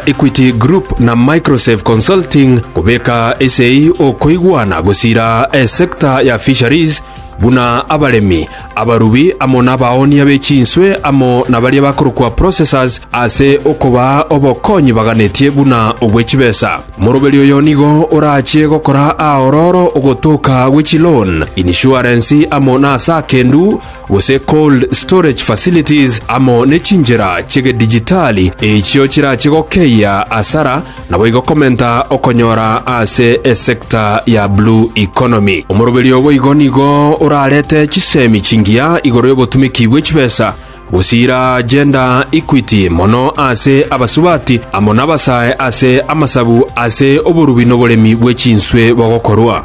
Equity Group na Microsave Consulting kobeka esei okoigwana gosira esecta ya fisheries buna abaremi, abarubi amo nabaoonia be chinswe amo nabaria bakorokwa processors ase okobaa obokonyi baganetie buna obwe chibesa. Moroberi oyo nigo orachie gokora aororo ogotoka gwe chiloan, insurance amo nasa akendu, gose cold storage facilities, amo ne chinchera chi'egedijitali echio chirache gokeyia asara naboigo komenta okonyora ase esector ya blue economy. Omoroberi oo boigo nigo orarete chisemi chingiya igoro y'obotumiki bwe chibesa gosiira gender equity mono ase abasubati amo nabasae ase amasabu ase oborubi noboremi bwe chinswe bogokorwa.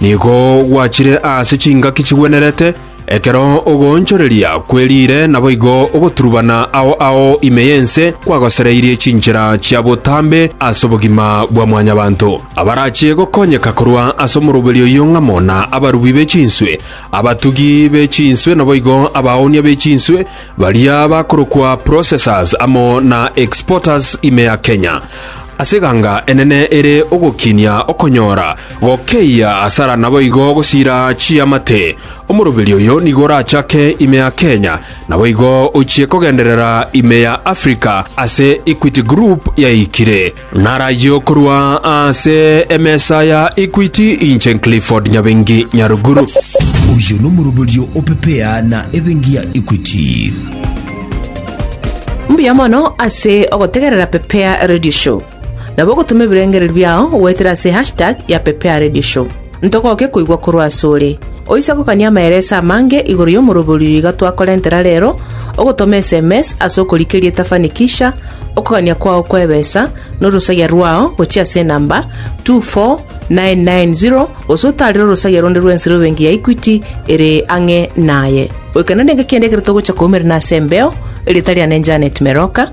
Nigo gwachire aase chingaki chigwenerete, ekero ogoonchoreria kweriire naboigo ogoturubana ao ao ime y'ense kwagosereirie chinchera chia botambe ase obogima bwa mwanyabanto. Abarachie gokonyeka korwa ase omoroberi oyio ng'amo na abarubi be chinswe, abatugi be chinswe naboigo abaoonia be chinswe, baria bakorokwa processors amo na exporters ime ya Kenya. Ase eganga enene ere ogokinia okonyora Gokeyia asara naboigo gosira chiamate. Omoroberi oyo nigo orachake ime ya Kenya, naboigo ochie kogenderera ime ya Africa ase Equity Group yaikire. Narayio korwa ase emesa ya Equity inche Clifford Nyabengi Nyaruguru. Oyo nomoroberio o Pepea na ebengi ya Equity. Mbuya mono ase ogotegerera Pepea Radio Show. nabo ogotoma ebirengererio biao goetera ase hashtag ya PepeaRadioShow. Ntogoke koigwa korwa asore. Oise gokania amaereso amange igoro y'omoroberio oyo iga twakorentera rero, ogotoma sms ase okorikeria etafanikisha, okogania kwao kw'ebesa, na orosagia rwao gochia ase enamba 24990 gose otaarere orosagia ronde rw'ensero ebenki ya Equity ere ang'e naye. Goika nere ngaki ende ekero togocha koumera nase embeo, erieta riane Janet Meroka.